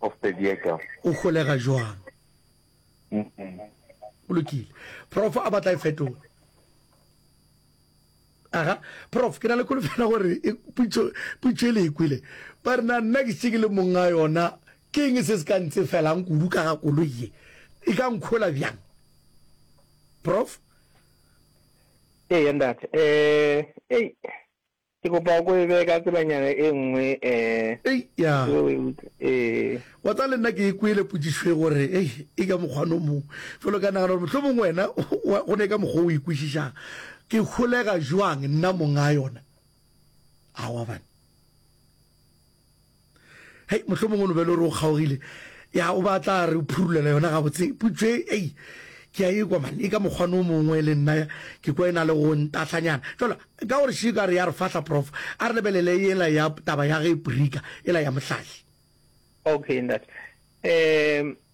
of the vehicle. O holega jwang? Go lokile. Prof a batla e fetola. Aga, prof ke na le kolofela gore e putso putso e le ikwile. E ba re na nna ke tsike le monga yona ke eng se se ka ntse felang kudu ka ga koloi e. E ka nkhola bjang? Prof? Ee ntate. Eh, ei. Ke kopa o ko e beye ka tselanyana e nngwe eh. Eya. Ke be o e utlwa. Ee. Wa tseba le nna ke e kwele potšišo e gore ei e ka mokgwana o mongwe. Felo ka nagana gore mohlomong wena wa go ne ka mokgwa o e kwešišang. Ke holega jwang nna mong'a yona? Aowa bane. hei mohlho mongwe nobele o re o kgaogile ya o ba tla re o phurulela yona ga botse putšo e ei ke a e kwa mane e ka mokgwane o mongwe le nna ke kwa e na le go ntahlanyana jalo ka gore šiko a re ya re fahla prof a re lebelele ela ya taba ya ge prika ela ya mohlahli okay ntate um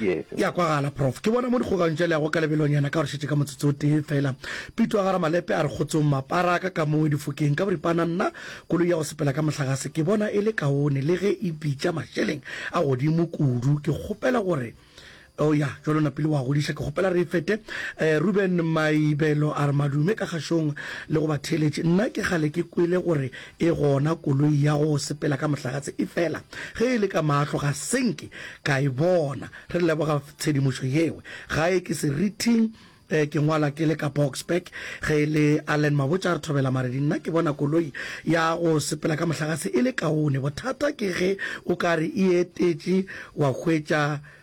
E a kwagala, Prof. Ke bona mo dikgokagantšo tša leago ka lebelonyana ka gore šetše ka motsotso o tee fela. Pitu a gara malepe a re kgotsong mapara a ka ka mongwe difokeng ka boripana nna koloi ya go sepela ka mohlagase ke bona e le kaone le ge e bitša mašeleng a godimo kudu. Ke kgopela gore Oh ya, jwale o napile o a godiša. Ke kgopela re e fete. Reuben Maibelo a re, Madume ka kgašong le go batheeletši. Nna ke kgale ke kwele gore E gona koloi ya go sepela ka mohlagatse e fela ge e le ka mahlo ga se nke ka e bona. Re leboga tshedimošo yeo. Gae ke Serithing, ke ngwala ke le ka Boksburg. Ge e le Allen Mabotja re thobela Maredi. Nna ke bona koloi ya go sepela ka mohlagatse e le kaone. Bothata ke ge o ka re e etetše wa hwetša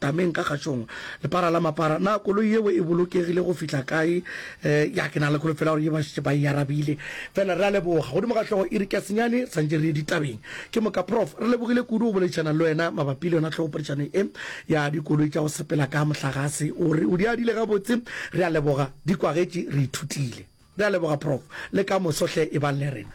tameng ka kgatšong lepara la mapara na koloi yeo e bolokegile go fihla kae um ya ke na le kholofela gore ye ba šetše ba e arabile fela re a leboga godimo ga hlogo iri ka senyane santše re ye ditabeng ke moka prof re lebogile kudu go boledišana le wena mabapi le yona tlhogopodišano e ya dikoloi tša go sepela ka mohlagase o re o di adile gabotse re a leboga di kwagetše re ithutile Re a leboga Prof. Le ka moso hle e bang le rena.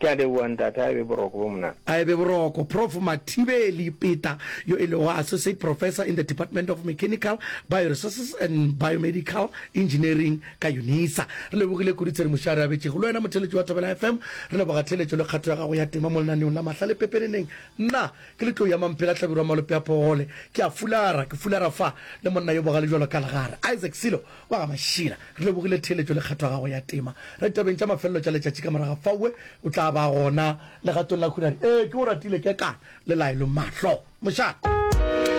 Ke a leboa ntate, a e be boroko bo monate. A e be boroko. Prof Mathibeli Peta yo e lego Associate Professor in the Department of Mechanical, Bioresources and Biomedical Engineering ka UNISA. Re lebogile kudu tshedimošo a re abetšego. Le wena motheeletši wa Thobela FM, re leboga theeletšo le kgato ya gago ya tema mo lenaneong la Mahlale Pepeneneng. Nna ke le tlou ya Mamphela Hlabirwa Malope a Pogole. Ke a fulara, ke fulara fa le monna yo bogale bjalo ka legare, Isaac Silo. Wa ga Mašila, re lebogile theeletšo le kgetho ya gago ya tema. Re ditabeng tša mafelelo tša letšatši ka morago ga faue, o tla ba gona legatong la khunare. Ee, ke go ratile, Kekana le Laelo, Mahlo, mošate.